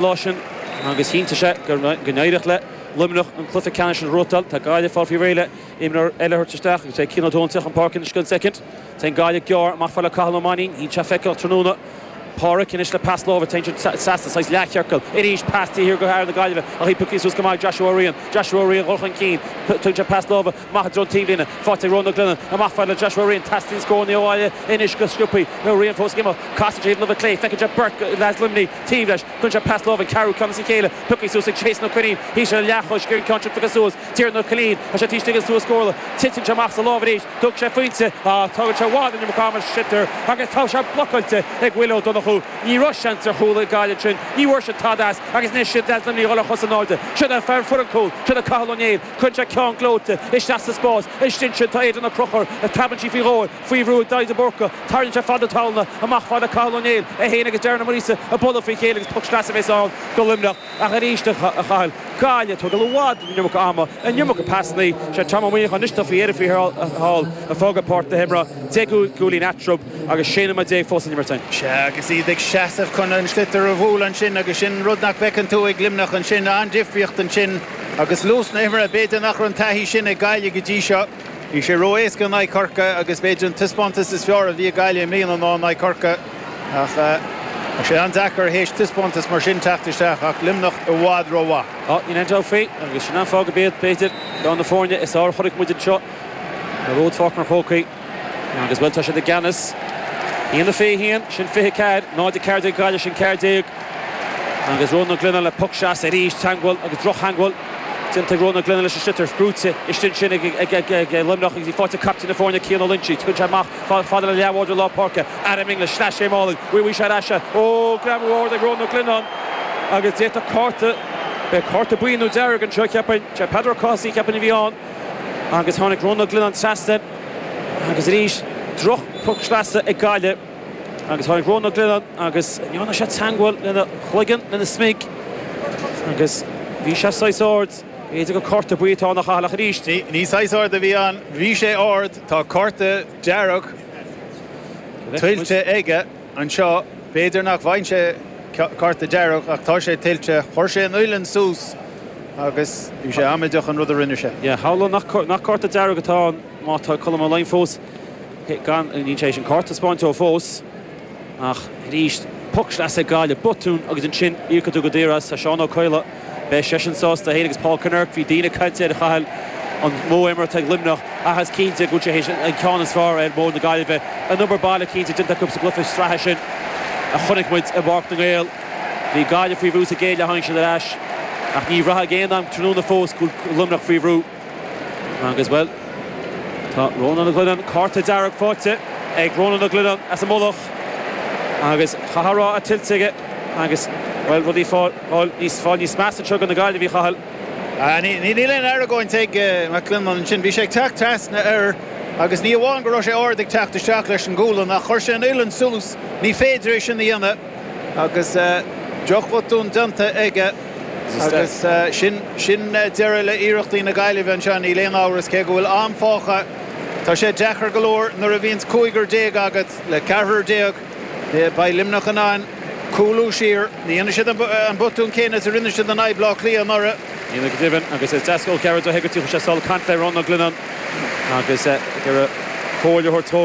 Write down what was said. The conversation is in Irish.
lá sin agus chinntigh sé go n-éireodh le Luimneach an cluiche ceannais sin a shroichtáil. Tá Gaillimh ag fáil faoi réidh le imreoir eile a thabhairt isteach agus beidh Cian Ó Dónaill ag teacht chun páirce anois i gceann soicind. Téann Gaillimh gearr amach fad le Cathal Ó Mainnín, bhí sé feiceálach tráthnóna. Pádraic anois le pas láimhe, téann siad trasna, saghas leathchiorcal. Arís pas taobh thiar go fhear na Gaillimhe ach í piocaithe suas go maith ag Joshua Ó Riain. Joshua Ó Riain, dhul chun cinn, tugann sé pas láimhe. maith i dtreo an taobhlíne. Faighte ag Rónán Glennon amach fad le Joshua Ryan. Teastaíonn scór ó Ghaillimh anois go sciobtha, Ó Riain fós ag imeacht. Casann sé tríd an láimh chlé. Feiceann sé beirt as Luimnigh taobh leis. Cuireann sé pas láimhe an ceathrú ceann as a chéile. Pioctha suas ag Jason Ó Coinín í sin. An leathchois ag an gceann sin pioctha suas. Tiernan Ó Cillín tá sé taobh istigh den stua scórála. Titeann sé amach as a lámh arís. Tógfaidh sé a phointe ach tógann sé i bhfad an iomarca ama ar an sliotar agus tá sé blocáilte ag Willie Ó Donnchú. Ní raibh seans ar chúl ag Gaillimh ansin. Ní bhfuair siad tada as agus anois siad as Luimnigh a dhul ar chos in airde. Siod é a fuair an cúl. Siod é Cathal Ó Néill. Cuireann sé ceann gleoite isteach sa spás istigh ansin tá Aidan Ó Conchúir, preabann sí faoi dhó faoi bhrú ag Daithí de Búrca, tarraingíonn sé fad na talúna amach fad le Cathal Ó Néill, é féin agus Darren Ó Muirgheasa ag bualadh faoi chéile agus poc sleasa bhéas ann go Luimneach. Ach arís a Chathail, Gaillimh ag tógáil i bhfad an iomarca ama an iomarca pasannaí, sé Tom Ó Muíneacháin anois tofa iar faoi thall ag fágáil páirc na himeartha deich gcúilín eatrub agus sé nóiméad déag fós le n-imirt ann. Sea agus iad ag seasamh chun an sliotar a bhualadh ansin agus sin rud nach bhfeiceann tú ag Luimneach ansin, an-difríocht ansin. Agus luas na himeartha, b'fhéidir nach raibh an taithí sin ag Gaillimh go dtí seo. Bhí sé ró-éasca in aghaidh Chorcaí agus b'fhéidir an taispeántas is fearr a bhí ag Gaillimh i mbliana ná in aghaidh Chorcaí. Ach tá sé an-deacair théis taispeántas mar sin teacht isteach ach Luimneach i bhfad rómhaith. Tá Ian Duffy agus Senan Fogg ar bith, b'fhéidir, ar na foirne is fearr a chonaic muid anseo i bPáirc an Chrócaigh. Agus, bhuel, tá siad i gceannas. A haon, fiche 1, sin fiche 4, 0, 14 ag Gaillimh, sin 14. Agus Rónán Glennon le poc sleasa arís. Teangmháil agus drochtheangmháil déanta ag Rónán Glennon leis an sliotar. Brúite istigh ansin ag Luimneach agus í faighte ag caiptín na foirne, Cian Ó Loinsigh, tugann sé amach chomh fada le leathbhádóir lár páirce. Adam English, sleais Shame álainn. Bhí bhí sé ar ais. Ó, greamú ard ag Rónán Ó Glionnáin. Agus d'fhéadfadh cárta, beidh cárta buí nó dearg anseo, cheapfainn. Sé Peadar Ó Cathasaigh, cheapfainn, a bhí ann. Agus tháinig Rónán Glennon trasna agus arís drochphoc sleasa ag Gaillimh agus tháinig Rónán Glennon agus dhearna sé teangmháil lena chloigeann, lena smig agus bhí sé saghas ard, b'fhéidir gur cárta buí atá ann a Chathail ach arís. Bhí, ní saghas ard a bhí ann, bhí sé ard, tá cárta dearg tuillte aige. anseo. B'fhéidir nach bhfaigheann sé cárta dearg ach tá sé tuillte. Chuir sé an uillinn suas agus bhí sé amaideach an rud a rinne sé. Yeah, tharla nach cárta dearg atá ann má tá Colm Ó Laighin fós gann. Níl sé théis an cárta a thaispeáint fós ach arís, poc sleasa ag Gaillimh, botún agus ansin íocfaidh tú go daor as, a Seán Ó Coileáin. Beidh seisean sásta é féin agus Paul Kinnerk. Bhí daoine ag caint air, a Chathail, an modh imeartha ag Luimneach, ach is cinnte go bhfuil sé théis an ceann is fearr ar mhodh na Gaillimhe. An obair baile cinnte déanta acu sa gcluiche sraithe sin a chonaic muid i bPáirc na nGael. Bhí Gaillimh faoi bhrú sa gcéad leath, tháinig siad ar ais, ach ní bhraithfeá ag aon am tráthnóna fós go bhfuil Luimneach faoi bhrú. Agus, bhuel, tá Ronan Glennon, cárta dearg faighte ag Ronan Glennon as an Mullach agus chaithfeá a rá é tuillte aige agus, bhuel, rudaí ag fáil níos, ag fáil níos measa anseo do na Gaillimhigh, a Chathail. Níl aon argóint ag Glennon ansin. Bhí sé ag teacht trasna air agus ní amháin go raibh sé ard ag teacht isteach leis an ngualainn ach chuir sé an uillinn suas, ní féidir é sin a dhéanamh. agus drochbhotún déanta aige agus sin sin deireadh le iarrachtaí na Gaillimhe anseo níl aon amhras cé go bhfuil am fágtha tá sé deacair go leor nuair a bhíonns cúigear déag agat le ceathrar déag beidh Luimneach in ann cúlú siar ní dhéanfaidh siad an botún céanna is a rinne siad in aghaidh Bhleá Cliath anuraidh. Ní minic a deimhin agus is deasca ó cheathrar do Hegarty a chuir sé sul ag caint le Ronan Glennon agus deireadh comhairle a thabhairt dhó.